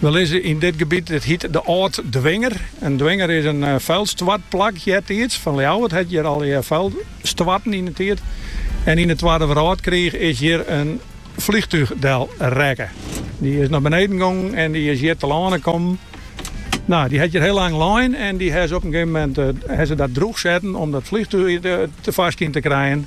We lizze yn dit gebiet, dit hiet de Âld Dwinger. In dwinger is in fuilstoartplak eartiids. Fan Ljouwert hat hjir alle fuil stoarten yn 'e tiid. En yn 'e Twadde Wrâldkriich is hjir in flychtúch del rekke. Dy is nei beneden gongen en dy is hjir telâne kommen. No, dy hat hjir hiel lang lein en dy ha se op in gegeven moment ha se dat drûch setten om dat flychtúch te foarskyn te krijen.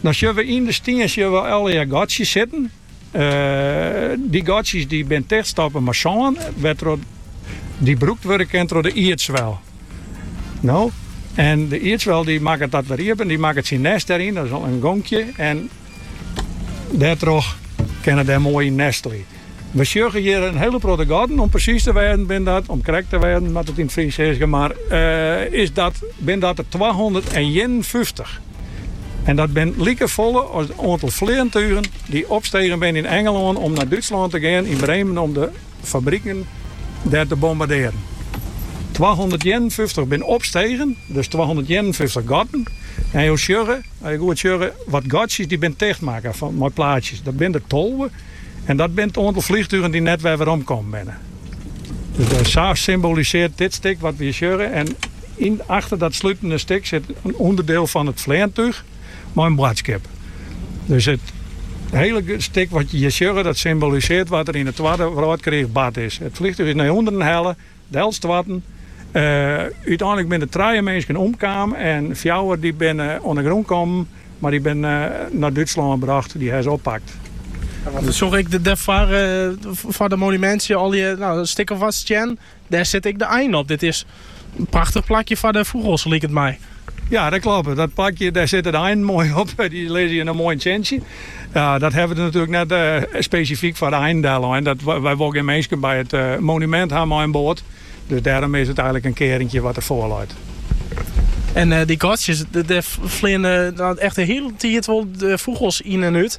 No sjoch we yn de stien sjoch we allegear gatsjes sitten. Dy gatsjes dy binne tichtstoppe mei sân, wêrtroch dy brûkt wurde kinne troch de ierdswel. No, en de ierdswel dy makket dat wer iepen, dy makket syn nêst dêryn, dat is al in gonkje, en dêrtroch kinne se dêr moai yn nestelje. We sjogge hjir in hiele protte gatten. Om presys te wêzen binne dat, om krekt te wêzen moat ik yn it Frysk sizze, mar is dat, binne dat der twahûndertienenfyftich. En dat binne like folle as it oantal fleantugen dy't opstegen binne yn Engelân om nei Dútslân te gean, yn Bremen om de fabriken dêr te bombardearjen. Twahûndertienenfyftich binne opstegen, dus twahûndertienenfyftich gatten. En jo sjogge, as jo goed sjogge, wat gatsjes dy binne tichtmakke mei plaatsjes. Dat binne der tolve. En dat binne it oantal flychtugen dy't net wer werom kommen binne. Dus sa symbolisearret dit stik wat we hjir sjogge. En yn achter dat slutende stik sit in ûnderdeel fan it fleantúch mei in boadskip. Dus it hele stik wat je hjir sjogge, dat symbolisearret wat der yn de Twadde Wrâldkriich bard is. It flychtúch is nei ûnderen helle. Delstoarten. Uteinlik binne trije minsken omkaam en fjouwer dy't binne oan 'e grûn kommen, mar dy binne nei Dútslân brocht. Dy hawwe se oppakt. Sjoch ik dêr foar it monumintsje al in stik of wat stien. Dêr sit ek in ein op. Dit is in prachtich plakje foar de fûgels, liket my. Ja, dat kloppet. Dat balkje, dêr sitte de einen moai op. Dy lizze hjir moai yn 't sintsje. Ja, dat hawwe we der natuerlik net spesifyk foar de einen dellein. Dat, wy wolle gjin minsken by it monumint ha mei in boat. Dus dêrom is it eigenlik in kearinkje wat der foar leit. En dy gatsjes, dêr fleane echt de hiele tiid wol fûgels yn en út.